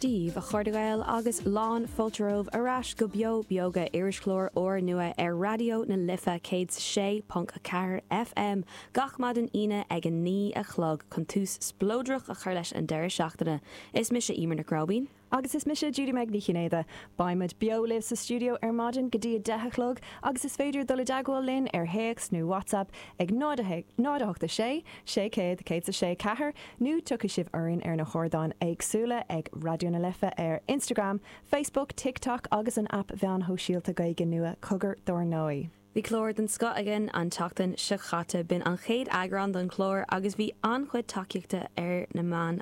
díobh, a chairde Gael, agus lán fáilte romhaibh ar ais go Beo Beoga irischlár úr nua ar Raidió na Life 106.4 FM gach maidin Aoine ag a naoi a chlog chun tús spleodrach a chur leis an deireadh seachtaine. Is mise Emer Nic Róibín. Agus is mise Judy-Meg Ní Chinnéide. Beimid beo libh sa stiúideo ar maidin go dtí a deich a chlog agus is féidir dul i dteagmháil linn ar théacs nó WhatsApp ag 0 8 6 600 1064 nó tiocfaidh sibh orainn ar na hardáin éagsúla ag Raidió na Life ar Instagram, Facebook, TikTok agus an aip mheáin shóisialta Gaeilge nua Cogar dár ndóigh! Bhí clár den scoth againn an tseachtain seo chaite, b'in an chéad eagrán don chlár agus bhí an-chuid tacaíochta ar na meáin.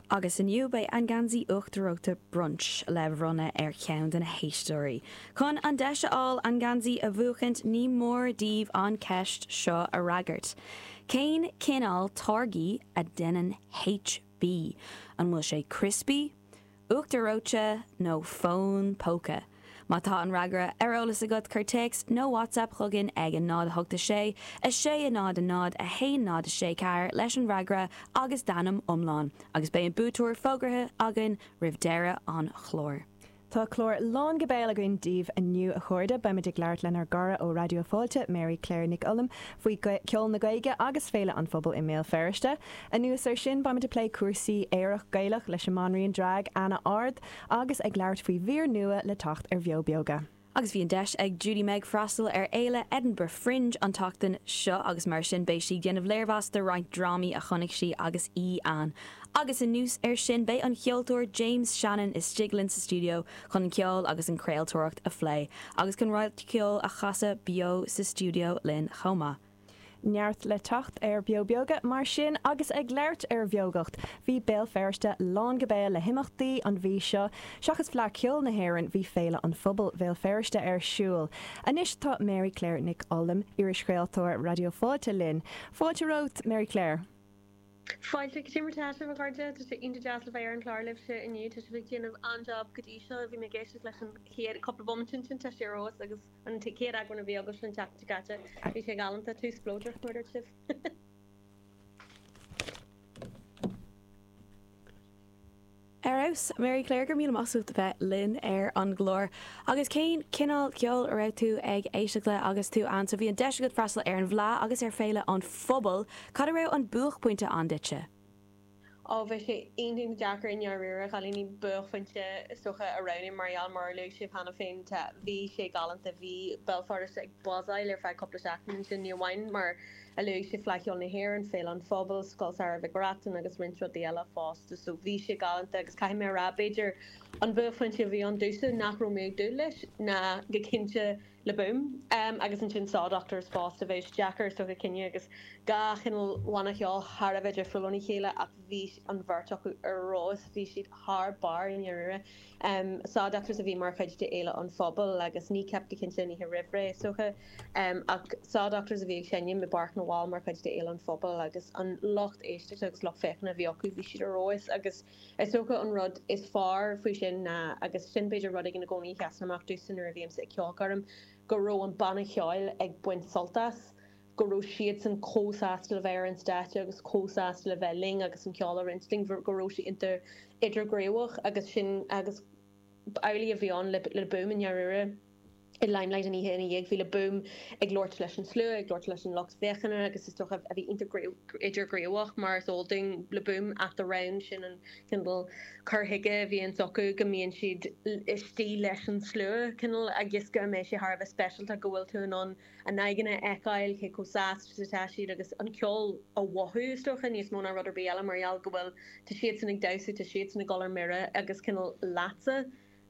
Agus inniu beidh an geansaí uachtar reoite Brunch le bhronnadh ar cheann de na héisteoirí. Chun an deis a fháil an geansaí a bhuachaint ní mór daoibh an cheist seo a fhreagairt. Cén cineál táirgí a deineann HB? An bhfuil sé criospaí, uachtar reoite nó fón póca? Má tá an fhreagra ar eolas agat cuir téacs nó WhatsApp chugainn ag 0 8 6 6 0 0 1 0 6 4 leis an bhfreagra agus d'ainm iomlán agus beidh an buaiteoir fógraithe againn roimh deireadh an chláir. Tá clár lán go béal againn daoibh inniu a chairde. Beimid ag labhairt lenár gcara ó Raidió Fáilte, Mary Claire Nic Ollam, faoi cheol na Gaeilge agus Féile an Phobail i mBéal Feirste. Anuas ar sin beimid ag plé cúrsaí aerach Gaelach leis an mbanríon drag, Anna Ard. Agus ag labhairt faoi mhír nua le teacht ar Bheo Beoga. Agus bhí an deis ag Judy-Meg freastal ar Fhéile Edinburgh Fringe an tseachtain seo agus mar sin beidh sí ag déanamh léirmheas de roinnt drámaí a chonaic sí agus í ann. Agus anuas ar sin beidh an cheoltóir James Shannon istigh linn sa stiúideo chun an ceol agus an craoltóireacht a phlé agus chun roinnt ceoil a chasadh beo sa stiúideo linn chomh maith. Neart le teacht ar Beo Beoga mar sin agus ag labhairt ar bheogacht, bhí Béal Feirste lán go béal le himeachtaí an mhí seo. Seachas Fleadh Cheoil na hÉireann, bhí Féile an Phobail Bhéal Feirste ar siúl. Anois tá Mary Claire Nic Ollam, irischraoltóir Raidió Fáilte linn. Fáilte romhat, Mary Claire. Fáilte go dtí mo chara, a chairde. Tá sé iontach deas a bheith ar an chlár libhse inniu. Tá sibh ag déanamh an-jab go dtí seo. Bhí mé ag éisteacht leis an chéad cúpla bomaite ansin. Tá sé ar fheabhas agus. An chéad eagrán a bhí agaibh an tseachtain seo caite. Bhí sé galánta. Two spleodrach, mar a dúirt sibh. Ar fheabhas! Mary Claire, go raibh míle maith agat as a bheith linn ar an gclár. Agus cén cineál ceoil a raibh tú ag éisteacht le agus tú ann? So bhí an deis agat freastal ar an bhFleadh agus ar Féile an Phobail. Cad a raibh an buaicphointe ann duitse? Ó bhí sé iontach deacair i ndáiríre, a chailíní, buaicphointe is dócha a roghnú mar gheall ar, mar a luaigh sibh cheana féin, tá, bhí sé galánta, bhí Belfast ag buzzáil ar feadh cúpla seachtain ansin, ní amháin mar a luaigh sibh Fleadh Cheoil na hÉireann, Féile an Phobail, Scoil Samhraidh Mhic Reachtain agus roinnt rudaí eile fosta, so bhí sé galánta agus caithfidh mé a rá b'fhéidir an buaicphointe a bhí ann domhsa nach raibh mé ag dúil leis ná go cinnte Le Boom agus ansin Saw Doctors fosta. Bheadh sé deacair is dócha cinneadh agus dhá chineál bhanna cheoil thar a bheith difriúil óna chéile ach bhí an bheirt acu ar fheabhas, bhí siad thar barr i ndáiríre. Saw Doctors a bhí mar chuid de Fhéile an Phobail agus Kneecap go cinnte an oíche roimh ré is dócha ach Saw Doctors a bhí ag seinm i bPáirc na bhFál mar chuid de Fhéile an Phobail agus an lucht éisteachta agus lucht féachana a bhí acu bhí siad ar fheabhas Is dócha an rud is fearr faoi sin ná, agus sin b'fhéidir rud éigin i gcónaí a sheasann amach domhsa nuair a bhímse ag ceolchoirm, go raibh an banna ceoil ag baint sult as, go raibh siadsan comh sásta le bheith ar an stáitse agus comh sásta le bheith linn agus an ceol a roinnt linn, go raibh sé iontach idirghníomhach agus sin, agus amhlaidh a bhí ann Le Boom i ndáiríre. i Limelight an oíche ina dhiaidh. Bhí Le Boom ag labhairt leis an slua, ag labhairt leis an lucht féachana agus is dócha bhí iontach idirghníomhach mar is eol dúinn Le Boom at the Round, sin an cineál cur chuige a bhíonn acu, go mbíonn siad istigh leis an slua, cineál agus go mbíonn sé thar a bheith speisialta, go bhfuil tú in ann a n-aghaidheanna a fheiceáil, cé chomh sásta is atá siad agus an ceol a mhothú is dócha, níos mó ná rud ar bith eile mar gheall go bhfuil, tá siadsan ag damhsa, tá siadsan ag dul ar mire agus cineál leatsa.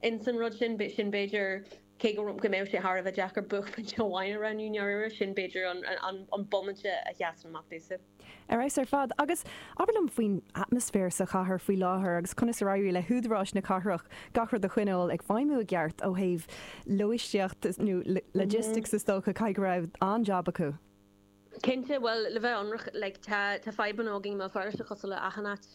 ins an rud sin, sin b'fhéidir, cé go go mbeadh sé thar a bheith deacair buaicphointe amháin a roghnú i ndáiríre, sin b'fhéidir an an an bomaite a sheasann amach domhsa. Ar fheabhas ar fad. Agus abair liom faoin atmaisféar sa chathair faoi láthair agus conas ar éirigh le húdaráis na cathrach gach rud a choinneáil ag feidhmiú i gceart ó thaobh lóistíocht nó logistics is dócha, caithfidh go raibh an-jab acu. Cinnte, bhuel, le bheith ionraic, like, tá, tá fadhbanna againn i mBéal Feirste cosúil le achan áit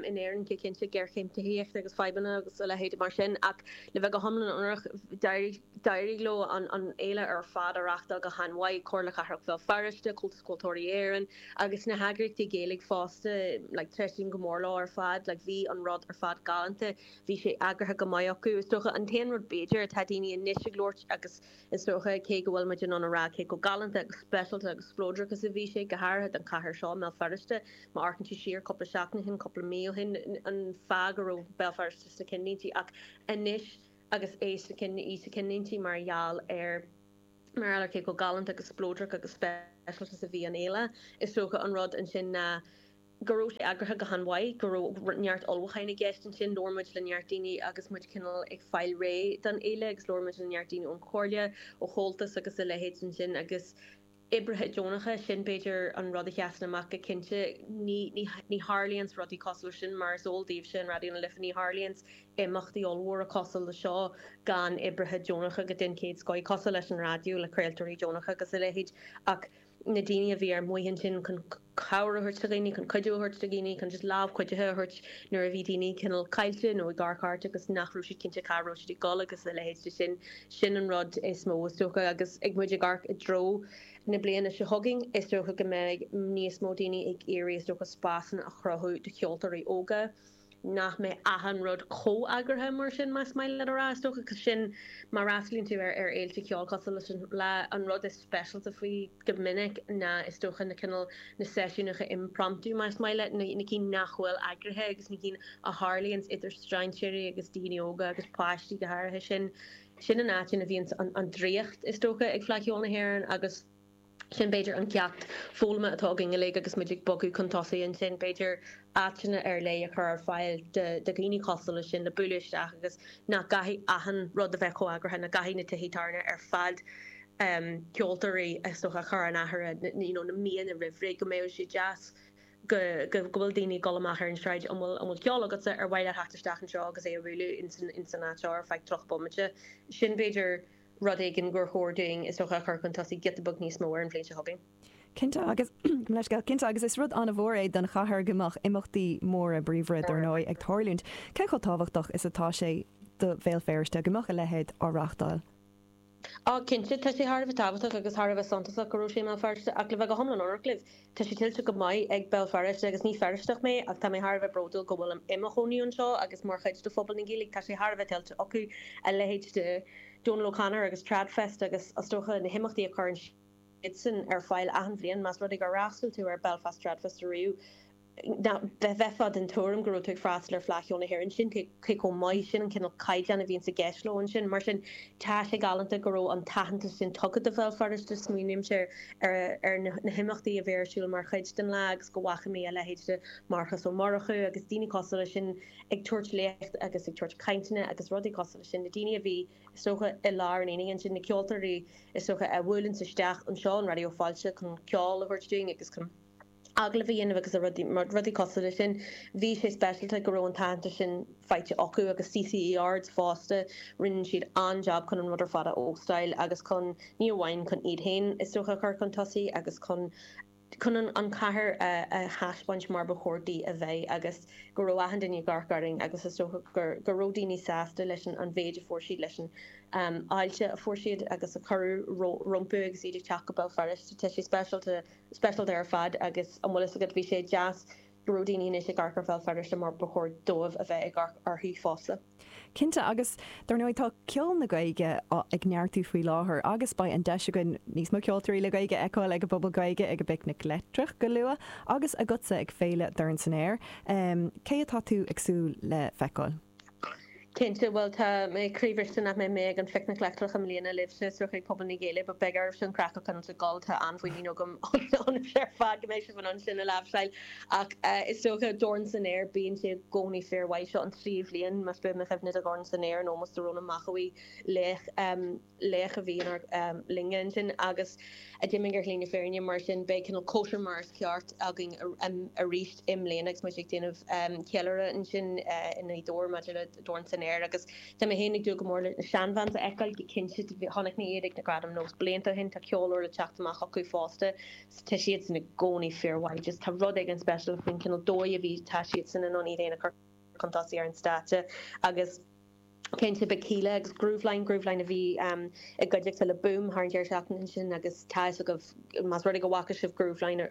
in Éirinn, go cinnte, géarchéim tithíochta agus fadhbanna agus a leithéid mar sin ach le bheith go hiomlán ionraic, d'éirigh, d'éirigh leo an, an fhéile ar fad a reachtáil go han-mhaith, Comhairle Cathrach Bhéal Feirste, Comhaltas Ceoltóirí Éireann agus na heagraíochtaí Gaeilge fosta, like, tréaslaím go mór leo ar fad, like, bhí an rud ar fad galánta, bhí sé eagraithe go maith acu. Is dócha, an t-aon rud b'fhéidir atá daoine anois ag labhairt agus. Is dócha, cé go bhfuil muid in ann a rá cé chomh galánta agus speisialta agus spleodrach is a bhí sé, go háirithe don chathair seo, i mBéal Feirste. Má amharcann tú siar cúpla seachtain ó shin, cúpla mí ó shin, an fáth go raibh Béal Feirste sna cinnlínte ach anois agus é sna cinn, í sna cinnlínte mar gheall ar, mar gheall ar cé chomh galánta agus spleodrach agus speisialta is a bhí an fhéile. Is dócha an rud ansin ná. go raibh sé eagraithe go han-mhaith, go raibh neart ullmhúcháin i gceist ansin. Labhair muid le neart daoine agus muid cineál ag fáil réidh don fhéile agus labhair muid le neart daoine ón chomhairle, ó Chomhaltas agus a leithéid ansin agus oibrithe deonacha, sin b'fhéidir an rud a sheasann amach go cinnte. Ní, ní, ní tharlaíonns rudaí cosúil leis sin mar is eol daoibhse in Raidió na Life, ní tharlaíonns imeachtaí ollmhóra cosúil le seo gan oibrithe deonacha go, den chéad scoith, cosúil leis an raidió, le craoltóirí deonacha agus a leithéid ach, na daoine a bhí ar maos ansin chun cabhair a thabhairt do dhaoine, chun cuidiú a thabhairt do dhaoine, chun just lámh chuidithe a thabhairt nuair a bhí daoine cineál caillte nó ag amharc thart agus nach raibh siad cinnte cá raibh siad ag dul agus a leithéid de sin. Sin an rud is mó is dócha agus ag muid ag amharc i dtreo na bliana seo chugainn is dócha go mbeidh níos mó daoine ag iarraidh is dócha spásanna a chruthú do cheoltóirí óga. nach mbeidh achan rud chomh eagraithe mar sin más maith leat a rá. Is dócha go sin má fhreastalaíonn tú ar ar fhéilte ceoil cosúil leis an Fhleadh, an rud is speisialta faoi go minic ná is dócha na cineál na seisiúnacha impromptu más maith leat, na na cinn nach bhfuil eagraithe agus na cinn a tharlaíonns idir strainséirí agus daoine óga agus páistí go háirithe. Sin sin an áit ina bhíonns an an draíocht is dócha ag Fleadh Cheoil na hÉireann agus. Sin b'fhéidir an ceacht foghlama atá againn uilig agus muid ag bogadh chun tosaigh ansin, b'fhéidir áiteanna ar leith a chur ar fáil do dhaoine cosúil leis sin le bualadh isteach agus nach gcaithfidh achan rud a bheith chomh eagraithe, nach gcaithfidh na tithe tábhairne ar fad ceoltóirí is dócha a chur in áirithe you know na míonna roimh ré go mbeidh sé deas go go go bhfuil daoine ag dul amach ar an sráid an bhfuil an bhfuil ceol agatsa ar mhaith leat theacht isteach anseo agus é a bhualadh in san in san áit seo ar feadh tríocha bomaite sin b'fhéidir rud éigin gur chóir dúinn, is dócha, a chur chun tosaigh giota beag níos mó ar an bhliain seo chugainn. Cinnte agus gabh mo leithscéal, cinnte agus is rud an-mhór é don chathair go mbeadh imeachtaí móra, bríomhara dar ndóigh, ag tarlúint. Cé chomh tábhachtach is atá sé do Bhéal Feirste go mbeadh a leithéid á reáchtáil? Ó cinnte, tá sé thar a bheith tábhachtach agus thar a bheith suntasach go raibh sé i mBéal Feirste ach le bheith go hiomlán ionraic libh, Tá sé tuillte go maith ag Béal Feirste agus ní Feirsteach mé ach tá mé thar a bheith bródúil go bhfuilim i mo chónaí anseo agus mar chuid de phobal na Gaeilge. Tá sé thar a bheith tuillte acu a leithéid de Donal O'Connor agus Tradfest agus is dócha na himeachtaí a chuireann siadsan ar fáil achan bhliain. Más rud é gur fhreastal tú ar Belfast Tradfest ariamh bheifeá den tuairim go raibh tú ag freastal ar Fleadh Cheoil na hÉireann. Sin cé chomh maith sin, an cineál caighdeáin a bhíonns i gceist leo ansin. Mar sin, tá sé galánta go raibh an t-aitheantas sin tugtha do Bhéal Feirste. Smaoinímse ar na himeachtaí a bhí ar siúl mar chuid den Fhleadh agus go bhfaca mé a leithéid de Mharcas Ó Murchú agus daoine cosúil leis sin ag tabhairt léacht agus ag tabhairt cainteanna agus rudaí cosúil leis sin. Na daoine a bhí, is dócha, i lár an aonaigh ansin, na ceoltóirí, is dócha, a bhuaileanns isteach anseo in Raidió Fáilte chun ceol a thabhairt dúinn agus chun. agallamh a dhéanamh agus rudaí cosúil le sin. Bhí sé speisialta go raibh an t-aitheantas sin faighte acu agus CCE Ards fosta, rinne siad an-jab chun an rud ar fad a óstáil agus chun, ní amháin chun iad féin is dócha a chur chun tosaigh agus chun chun an chathair a thaispeáint mar ba chóir di a bheith agus go raibh achan duine ag amharc orainn agus is dócha gur go raibh daoine sásta leis an mhéid a fuair siad, leis an fháilte a fuair siad agus a cuireadh rompu agus iad ag teacht go Béal Feirste. Tá sé speisialta. speisialta ar fad agus an bhfuil fhios agat bhí sé deas go raibh daoine anois ag amharc ar Bhéal Feirste mar ba chóir dóibh a bheith ag amharc uirthi fosta. Cinnte agus dar ndóigh tá ceol na Gaeilge á ag neartú faoi láthair agus beidh an deis againn níos mó ceoltóirí le Gaeilge a fheiceáil ag an bPuball Gaeilge ag an bPicnic Leictreach go luath agus agatsa ag Féile Dorn San Aer cé atá tú ag súil le feiceáil? Cinnte, bhuel, tá mé croíbhriste nach mbeidh mé ag an Phicnic Leictreach i mbliana libhse, suas chuig Puball na Gaeilge, but beidh oraibhse an craic a choinneáilt ag gol, tá an-mhuinín agam ionaibhse ar fad go mbeidh sibh in ann sin a láimhseáil, ach is dócha, Dorn San Aer, bíonn sé i gcónaí fíor-mhaith, seo an tríú bhliain, más buan mo chuimhne, de Dhorn San Aer, in ómós do Rónán Mac Aodha Bhuí, laoch. laoch a bhí inár linne ansin agus a d'imigh ar shlí na fírinne, mar sin beidh cineál cóisir mar is ceart againn arís i mbliana agus muid ag déanamh ceiliúradh ansin i nGaoth Dobhair maidir le Dorn San Aer agus tá mé féin ag dúil go mór le na Shan Vans a fheiceáil go cinnte, chonaic mé iad ag na Gradaim Nós blianta ó shin, tá ceol úr le teacht amach acu fosta so tá siadsan i gcónaí fíor mhaith, just tá rud éigin speisialta faoin cineál dóigh a bhí, tá siadsan in ann iad féin a chur chun tosaigh ar an stáitse agus. cinnte beidh Kíla agus Grooveline, Grooveline a bhí i gcuideachta le Boom thar an deireadh seachtaine ansin agus tá fhios agaibh más rud é go bhfaca sibh Grooveline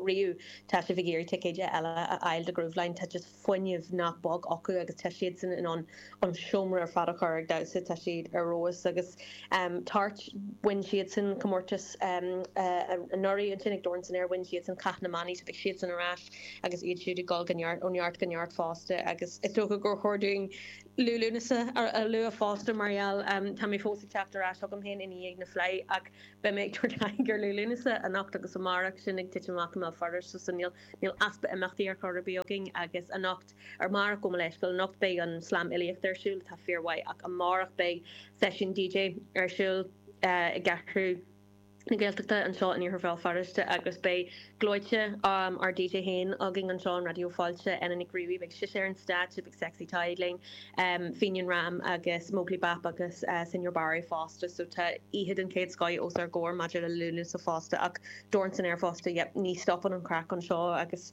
riamh tá sibh ag iarraidh ticéid eile a fháil do Grooveline. Tá just fuinneamh nach beag acu agus tá siadsan in ann an seomra ar fad a chur ag damhsa, tá siad ar fheabhas agus Torch, bhain siadsan comórtas anuraidh ansin ag Dorn san Aer, bhain siadsan Cath na mBannaí so beidh siadsan ar ais. agus iad siúd ag dul ó neart go neart fosta agus is dócha gur chóir dúinn Liú Lúnasa a lua fosta mar gheall tá mé fós ag teacht ar ais chugam féin i ndiaidh na Fleá ach beidh mé ag tabhairt aghaidh ar Liú Lúnasa anocht agus amárach sin ag titim amach i mBéal Feirste so níl easpa imeachtaí ar chor ar bith againn agus anocht ar amárach gabh mo leithscéal anocht beidh an Slam Fhilíochta ar siúl atá fíormhaith ach amárach beidh seisiún DJ ar siúl i gCeathrú na Gaeltachta anseo in Iarthar Bhéal Feirste agus beidh gleoite ár DJ féin againn anseo in Raidió Fáilte, Enda Nic Riabhaigh, beidh sise ar an stáitse, beidh Sexy Tadhg linn, Fenian Ram agus Móglaí Bap agus Señor Barra fosta so tá oíche den chéad scoth os ár gcomhair maidir le Lúnasa fosta ach Dorn San Aer fosta, yep, ní stopann an chraic anseo agus.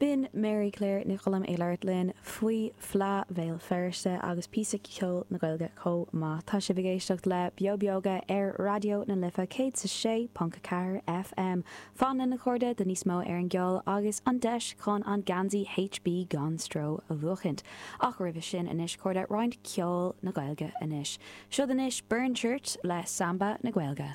B'in Mary Claire Nic Colaim ag labhairt linn faoi Fhleadh Bhéal Feirste agus píosa ceoil na Gaeilge chomh maith. Tá sibh ag éisteacht le Beo Beoga ar Raidió na Life 106.4 FM. Fan linn a chairde do níos mó ar an gceol agus an deis chun an geansaí HB Gan Stró a bhuachaint. Ach roimhe sin anois cairde, roinnt ceoil na Gaeilge anois. Siúd anois Burnchurch le Samba na Gaeilge.